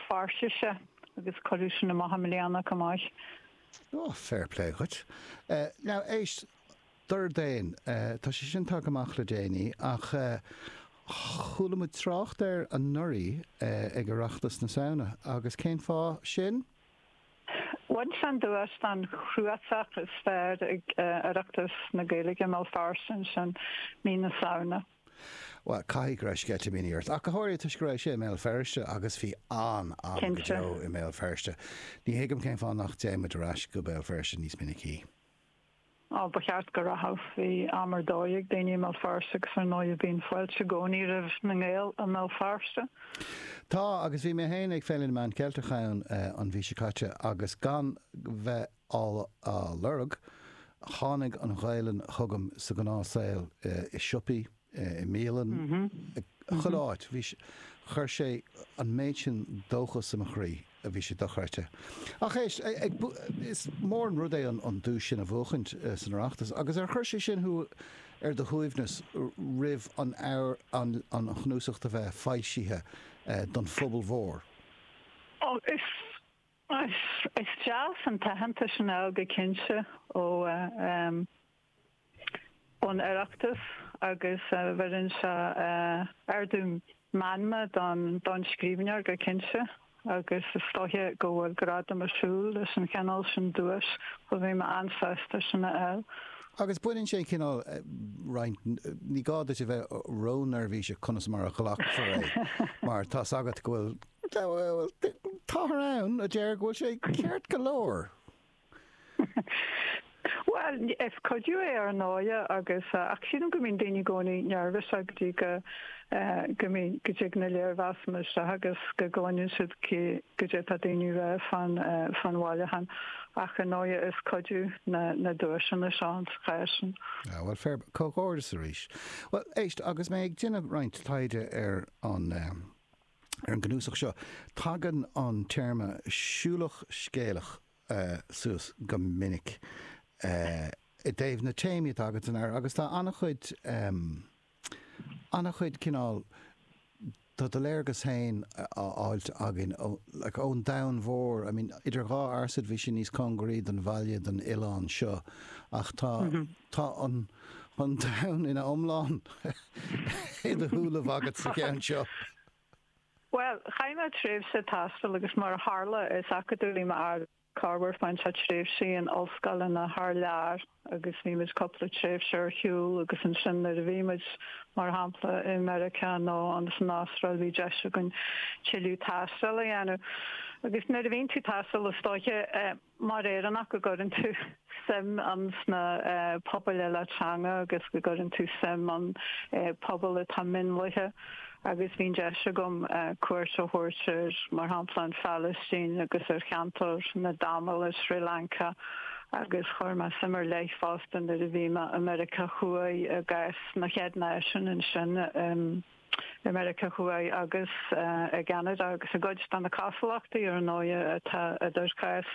Feirste agus cuireadh sin amach i mbliana chomh maith. Ó, fair play dhuit. Now, éist, Dordéan, tá sé sin tagtha amach le déanaí ach chuala muid trácht air anuraidh ag Oireachtas na Samhna agus cén fáth sin? Bhain sé an duais don chnuasach is fearr ag Oireachtas na Gaeilge i mBéal Feirste ansin mí na Samhna. Bhuel, caithfidh go raibh sceitimíní ort, ach go háirithe toisc go raibh sé i mBéal Feirste, agus bhí an-am go Cinnte. deo i mBéal Feirste. Ní thuigim cén fáth nach dtéann muid ar ais go Béal Feirste níos minicí. Á, ba cheart go rachadh. Bhí am ar dóigh ag daoine i mBéal Feirste, agus ar ndóigh bíonn fáilte i gcónaí roimh na nGael i mBéal Feirste. Tá, agus bhí mé féin ag Féile na Meán Ceilteach ann an mhí seo caite, agus gan bheith á lorg. Tháinig an Ghaelainn chugam sa ghnáthshaol, i siopaí, i mbialann, chuile áit. Bhí, chuir sé an méid sin dóchas i mo chroí, bhí sé dochreidte. Ach éist, ag, is mór an rud é an duais sin a bhuachaint san Oireachtas, agus ar chuir sé sin thú ar do shuaimhneas roimh an, an chnuasacht a bheith foilsithe don phobal mhór? Ó, is, Is deas an t-aitheantas sin a fháil go cinnte ón Oireachtas agus bheireann sé ardú meanma don scríbhneoir go cinnte agus is dóiche go bhfuil gradam ag siúl leis an chineál sin duais so bhí mé an-sásta sin a fháil. Agus baineann sé an cineál roinnt, ní gá duit a bheith ró-neirbhíseach conas mar a ghlacfar é mar tá's agat go bhfuil Táthar ann a deir go bhfuil sé ceart go leor. Bhuel, is cuidiú é ar ndóigh agus, ach sílim go mbíonn daoine i gcónaí neirbhíseach go dtí go, go mbíonn, go dtig na léirmheasanna isteach agus go gcluineann siad cad é atá daoine a rá fán, fán bhailiúchán. Ach ar ndóigh is cuidiú na, na duaiseanna sa chás sin. Ah bhuel, fair, comhghairdeas arís. Bhuel éist, agus mé ag déanamh roinnt taighde ar an, Ar an gcnuasach seo, tagann an téarma 'siúlach scéalach' suas go minic i dtaobh na téamaí atá agat ann agus tá an-chuid, an-chuid cineál, tá do léargas féin á fháilt againn ón domhan mhór, I mean, Idir Dhá Fhearsaid bhí sé níos cóngaraí don bhaile, don oileán seo ach tá, tá an domhan ina iomlán. shiúl agat sa cheann seo? Bhuel, chaith mé tréimhse ag taisteal agus mar a tharla, is acadúlaí m'athair. Corruair fuair sé tréimhsí in ollscoileanna thar lear agus bhí muid cúpla tréimhse ar shiúl agus ansin nuair a bhí muid, mar shampla, i Meiriceá nó insan Astráil, bhí deis againn tuilleadh taistil a dhéanamh. Agus nuair a bhíonn tú ag taisteal, is dóiche. Mar Éireannach go gcuireann tú suim insna pobail eile teanga agus go gcuireann tú suim i bpobail atá mionlaithe agus bhí an deis agam cuairt a thabhairt ar mar shampla an Phalaistín agus ar cheantar na dTamal i Sri Lanka agus chuir mé suim ar leith fosta nuair a bhí mé i Meiriceá Thuaidh i gcás na chéad náisiún ansin i i Meiriceá Thuaidh agus i gCeanada, agus i gcuid de na cosúlachtaí, ar ndóigh, atá idir cás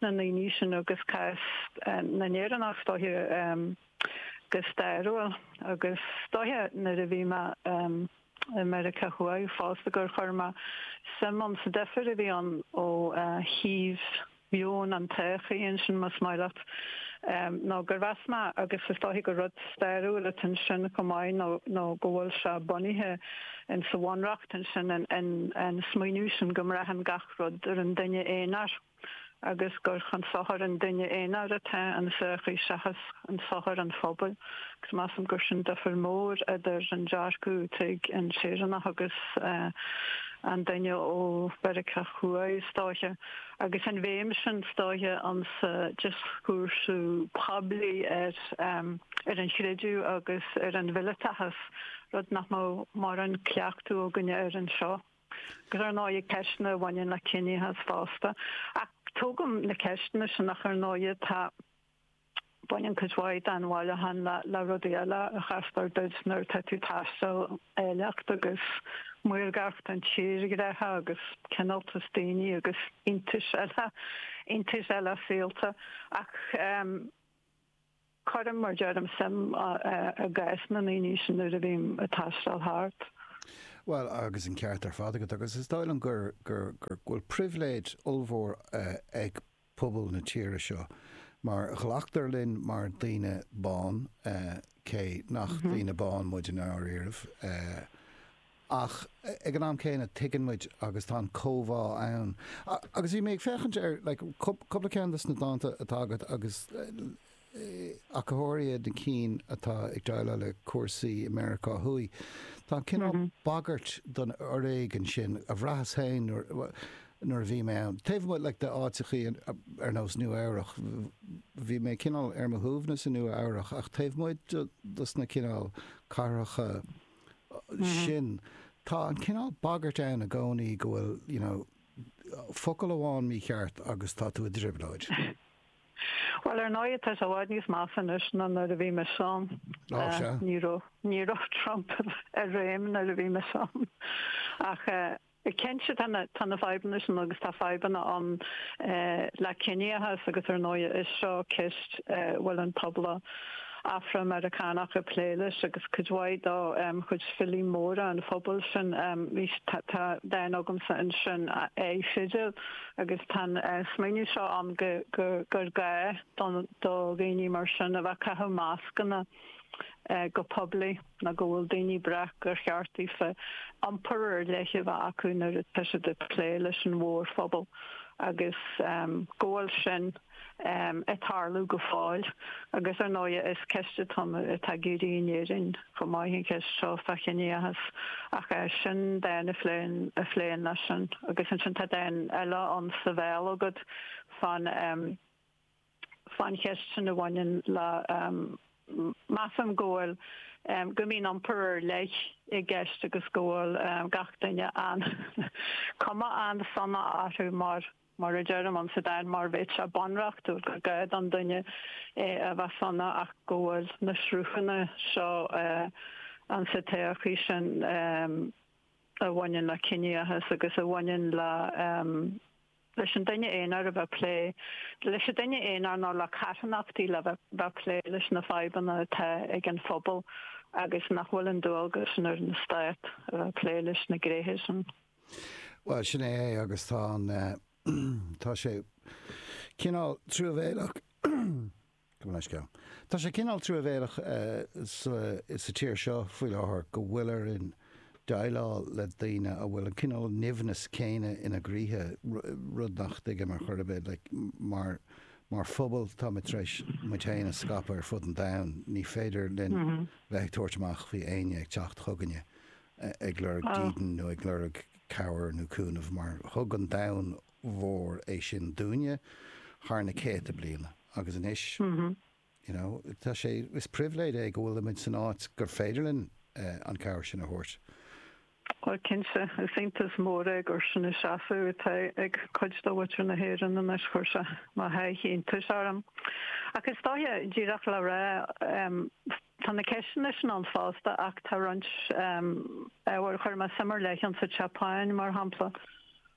na ndaoine sin agus cás na nÉireannach, is dóiche, go stairiúil. Agus is dóiche, nuair a bhí mé i Meiriceá Thuaidh fosta, gur chuir mé suim insa difir a bhí ann ó thaobh. Meon na sochaí, ansin, más maith leat, ná gur mheas mé, agus is dóiche gur rud stairiúil atá ansin chomh maith, nó go bhfuil sé bunaithe insa bhunreacht ansin, an smaoineamh sin go mbraitheann gach rud ar an duine aonair, agus gur chun sochair an duine aonair atá an tsochaí seachas chun sochair an phobail. Agus measaim gur sin difir mór idir an dearcadh atá ag an Éireannach agus an duine ó Mheiriceá Thuaidh, is dóiche. Agus an bhéim sin is dóiche, insa dioscúrsa poiblí ar an chreideamh agus ar an mhileatachas, rud nach mbeadh mórán cleachtadh againne air anseo, agus ar ndóigh ar cheisteanna a bhaineann le ciníochas fosta. Ach tógaim na ceisteanna sin, ach ar ndóigh tá. Baineann cuid mhaith den bhailiúchán le rudaí eile a chastar duit nuair atá tú ag taisteal, áilleacht agus maorgacht an tírdhreacha agus cineáltas daoine agus iontais eile, iontais eile saolta. Ach cuirim, mar deirim, suim i gcás na ndaoine sin nuair a bhím ag taisteal thart. Bhuel, agus an ceart ar fad agat, agus is dóigh liom go bhfuil pribhléid ollmhór ag pobal na tíre seo mar glactar linn mar daoine bán, cé nach daoine bán muid i ndáiríribh, ach ag an am céanna tuigeann muid agus tá an comhbhá ann. Agus bhí mé ag féachaint ar like cúpla ceann de na dánta atá agat agus ach go háirithe na cinn atá ag déileáil le cúrsaí i Meiriceá Thuaidh. Tá an cineál bagairt don fhoréigean sin, bhraitheas féin nuair a bhí mé ann, taobh amuigh like de áiteachaí ar nós Nua Eabhrach, bhí mé cineál ar mo shuaimhneas i Nua Eabhrach ach taobh amuigh dos na cineál cathracha sin, tá an cineál bagairt ann i gcónaí go bhfuil you know focal amháin mícheart agus tá tú i dtrioblóid. Bhuel, ar ndóigh, tá sé i bhfad níos measa anois ná nuair a bhí mise ann. Ó, sea. Ní raibh, ní raibh Trump i réim nuair a bhí mise ann. Ach cinnte, tá na, tá na fadhbanna sin agus tá fadhbanna ann le ciníochas agus ar ndóigh is seo ceist a bhfuil an pobal Afra-Mheiriceánach ag plé leis agus cuid mhaith de chuid filí móra an phobail sin, tá dán agamsa ansin, A Fidil. agus tá an smaoineamh seo ann gur gá do dhaoine mar sin a bheith ag caitheamh mascanna go poiblí nó go bhfuil daoine breac gur cheart daofa iompar ar leith a bheith acu nuair atá siad ag plé leis an mhórphobal agus go bhfuil sin ag tarlú go fóill. Agus ar ndóigh is ceist atá ag éirí in Éirinn chomh maith, an cheist seo fá chiníochas. Ach sin dán a phléann leis sin. Agus ansin tá dán eile ann sa bhéal agat fán cheist sin a bhaineann le, measaim go bhfuil, go mbíonn iompar ar leith i gceist agus go bhfuil gach duine an, cuma an-sona orthu mar Mar a deirim ann sa dán mar bheadh sé bunreachtúil gur gá don duine a bheith sona ach go bhfuil na sruthanna seo ann sa tsochaí sin a bhaineann le ciníochas agus a bhaineann le leis an duine aonair a bheith plé leis an duine aonair nó le carthanachtaí le bheith plé leis na fadhbanna atá ag an phobal agus nach bhfuil an dualgas sin ar an stát a bheith plé leis na gnéithe sin. Bhuel, sin é é agus tá an, tá sé cineál truamhéileach, go mbeidh sceal, tá sé cineál truamhéileach sa, sa tír seo faoi láthair go bhfuiltear ag déileáil le daoine a bhfuil an cineál nimhneas céanna ina gcroíthe, rud nach dtuigim ar chor ar bith, like, mar, mar phobal táimid tar éis muid féin a scaipeadh ar fud an domhain, ní féidir linn bheith ag tabhairt amach faoi éinne ag teacht chugainne ag lorg dídean nó ag lorg cabhair nó cúnamh, mar thug an domhan mhór é sin dúinne thar na céadta bliana agus anois you know tá sé, is pribhléid é go bhfuilimid san áit gur féidir linn an chabhair sin a thabhairt. Bhuel cinnte, is iontas mór é gur sin an seasamh atá ag cuid de mhuintir na hÉireann anois, chuir sé mo sháith iontais orm. Ach is dóiche, díreach le rá, Tá na ceisteanna sin ann fosta, ach tá roinnt ábhair, chuir mé suim ar leith ann sa tSeapáin, mar shampla,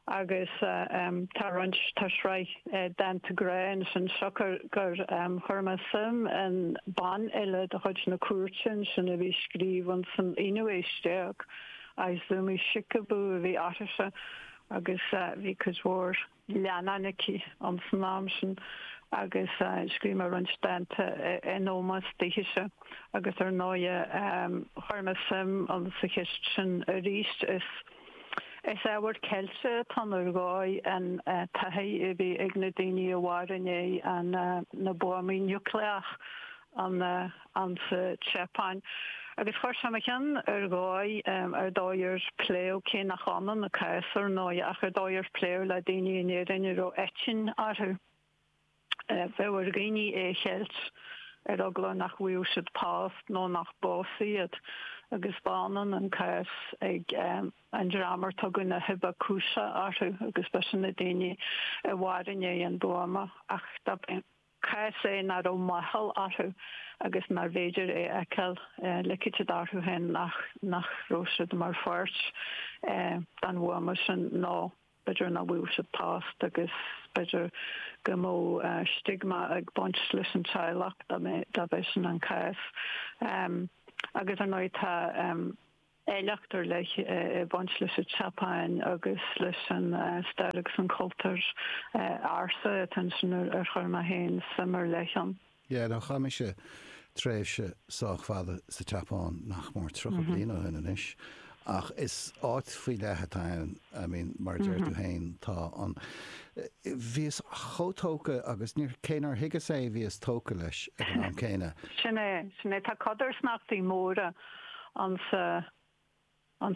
agus tá roinnt, tá sraith dánta grá ansin siocair gur chuir mé suim in banfhile de chuid na cúirte ansin a bhí ag scríobh insan aonú aois déag, Izumi Shikibu a bhí uirthise, agus bhí cuid mhór. leannáin aici insan am sin agus scríobh mé roinnt dánta in ómós daoithese agus ar ndóighe chuir mé suim sa cheist sin arís. Is ábhar ceilte atá ann ar dhóigh an taithí a bhí ag na daoine a mhair i ndiaidh na buamaí núicléach ann sa tSeapáin. Agus chuir sé i mo cheann ar dhóigh, an dóigh ar pléadh, cé nach ionann an cás ar ndóigh, ach an dóigh ar pléadh le daoine in Éirinn a raibh eitinn orthu. Bheadh ar dhaoine é a cheilt, ar eagla nach bhfaigheadh siad post nó nach bpósfaí iad. Agus ba ionann an cás ag an dream ar tugadh na hibakusha orthu, agus b'shin na daoine a mhair i ndiaidh an bhuama. Ach dob é an. cás é nach raibh máchail orthu agus nárbh fhéidir é a fheiceáil, ligfeadh siad orthu féin nach raibh siad mar pháirt den bhuama sin, nó b'fhéidir nach bhfaigheadh siad post, agus b'fhéidir go mbeadh stiogma ag baint leis an teaghlach dá mbeadh sin an cás. Agus ar ndóigh tá. áilleacht ar leith ag baint leis an tSeapáin agus leis an stair agus an cultúr ársa atá ansin ar chuir mé féin suim ar leith ann. Yeah, no, chaith mise tréimhse sách fada sa tSeapáin, nach mór tríocha bliain ó shin anois, ach is áit faoi leith atá ann, I mean, mar a deir tú féin, tá an, bhíos chomh tógtha agus níor, cé nár thuigeas é bhíos tógtha leis ag an am céanna. Sin é, sin é, tá codarsnachtaí móra. ann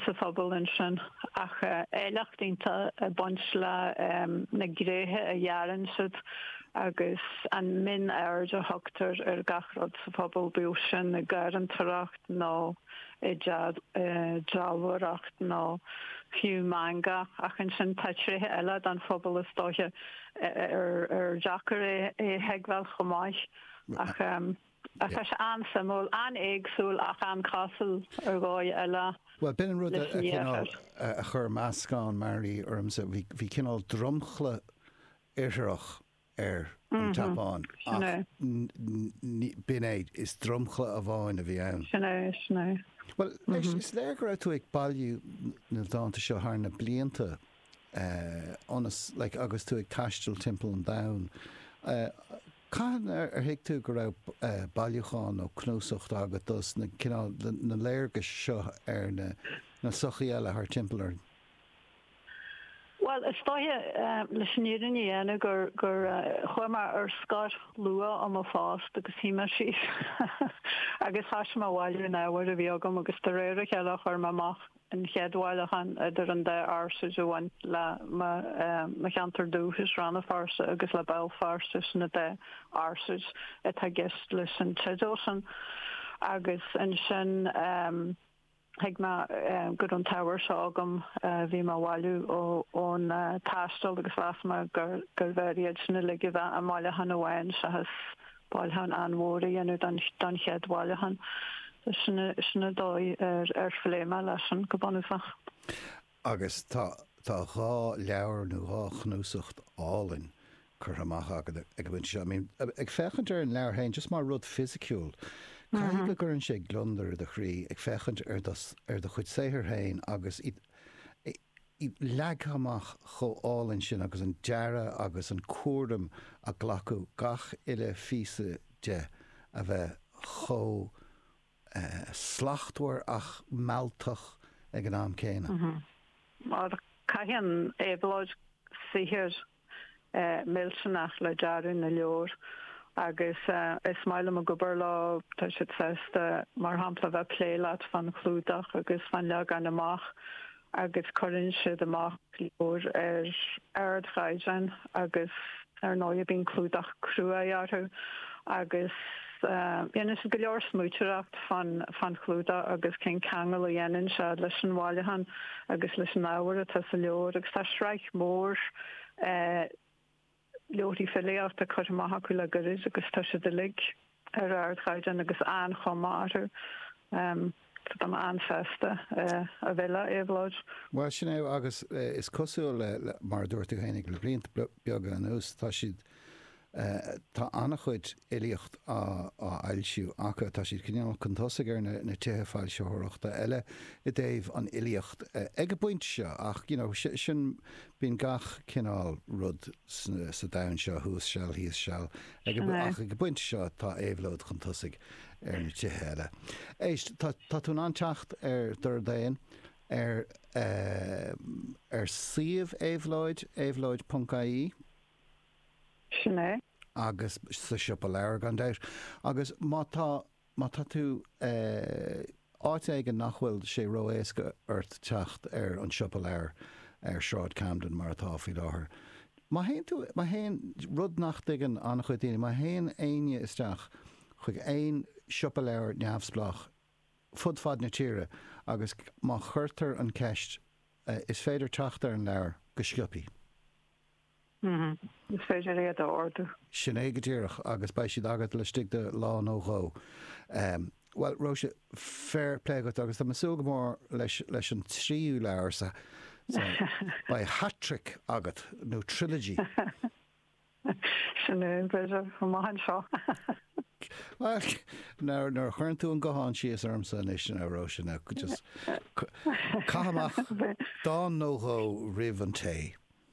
sa phobal ansin ach áilleacht iontach ag baint le na gréithe a dhearann siad agus an mionaird a thugtar ar gach rud sa phobal, bíodh sin i ngarraíodóireacht nó i ndealbhóireacht nó fiú manga. Ach ansin tá tréithe eile den phobal is dóiche ar deacair é a thuigbheáil chomh maith. Tá sé an-suimiúil, an-éagsúil ach an-chosúil ar dhóigh eile Bhuel, b'in an rud a cineál chuir meascán mearaí ormsa. Bhí cineál dromchla Iartharach ar an tSeapáin ach b'in é, is dromchla amháin a bhí ann. Sin é, sin é. Bhuel, anois, is léir go raibh tú ag bailiú na dánta seo thar na blianta I mean, like, agus tú ag taisteal timpeall an domhain. Cathain ar thuig tú go raibh bailiúchán nó cnuasach agat dos na cineál na léargais seo ar na sochaí eile thar timpeall orainn? Bhuel, is dóiche, leis an fhírinne a dhéanamh, gur chuaigh mé ar scor luath ó mo phost agus shuigh mé síos agus thoisigh mé a bhailiú an ábhair a bhí agam agus de réir a chéile chuir mé amach an chéad bhailiúchán idir an dá fhearsaid a bhain le mo cheantar dúchais, Rann na Feirste, agus le Béal Feirste, sin an dá fhearsaid atá i gceist leis an teideal sin. Agus ansin thuig mé go raibh an t-ábhar seo agam a bhí mé a bhailiú ón taisteal agus mheas mé gurbh fhearr iad sin uilig a bheith i mbailiúchán amháin seachas bailiúchán an-mhór a dhéanamh don chéad bhailiúchán. Sin an dóigh ar phléigh mé leis sin go bunúsach. Agus tá, tá dhá leabhar nó dhá chnuasach álainn curtha amach agat ag an bpointe seo. I mean, ag féachaint ar an leabhar féin, just mar rud fisiciúil, caithfidh go gcuireann sé gliondar i do chroí, ag féachaint ar do, ar do chuid saothar féin agus iad, leagtha amach chomh hálainn sin agus an dearadh agus an cúram a glacadh le gach uile phíosa de a bheith chomh slachtmhar ach mealltach ag an am céanna. Caitheann Éabhlóid saothar millteanach le dearadh na leabhar agus is maith liom a bheith ag obair leo, tá siad sásta mar shampla a bheith ag plé leat fán chlúdach agus fán leagan amach agus cuireann siad amach leabhair ar ardchaighdeán agus ar ndóigh bíonn clúdach cruaidh orthu agus déanann siad go leor smaointeoireacht fán chlúdach agus cén ceangal a dhéanann sé leis an bhailiúchán agus leis an ábhar atá sa leabhar agus tá sraith mhór leabharthaí filíochta curtha amach acu le gairid agus tá siad uilig ar ardchaighdeán agus an chuma mhaith orthu. Tá an-fheabhas ar Éabhlóid. Bhuel, sin é, agus is cosúil le, mar a dúirt tú féin, le blianta beaga anuas, tá siad, tá an-chuid filíocht á fhoilsiú acu, tá siad cineál chun tosaigh ar na tithe foilsitheoireachta eile i dtaobh an fhilíocht ag an bpointe seo, ach, you know, sin, bíonn gach cineál rud sa domhan seo, thuas seal, thíos seal, ag an, ach ag an bpointe seo tá Éabhlóid chun tosaigh ar na tithe eile. Éist, tá tú in ann teacht ar Dordán ar ar suíomh Éabhlóid, éabhlóid ponc ie. Sin é. agus sa Siopa Leabhar, gan dabht. Agus má tá, má tá tú. Áit éigin nach bhfuil sé ró-éasca ort teacht ar an siopa leabhar ar Shráid Camden mar atá faoi láthair. Má théann tú, má théann, rud nach dtuigeann an-chuid daoine, má théann éinne isteach chuig aon siopa leabhar neamhspleách fud fad na tíre agus má chuirtear an cheist is féidir teacht ar an leabhar go scioptha. Mm-hmm. Is féidir iad a ordú. Sin é go díreach, agus beidh siad agat laistigh de lá nó dhó. Bhuel, Róise, fair play agat, agus tá mé ag súil go mór leis an tríú leabhar sa, sa, beidh hat-trick agat, nó trilogy. Sin é, b'fhéidir, amach anseo. Bhuel, nuair a chuireann tú an guthán síos ormsa anois, a Róise, now, just, caith amach dán nó dhó roimh an tae.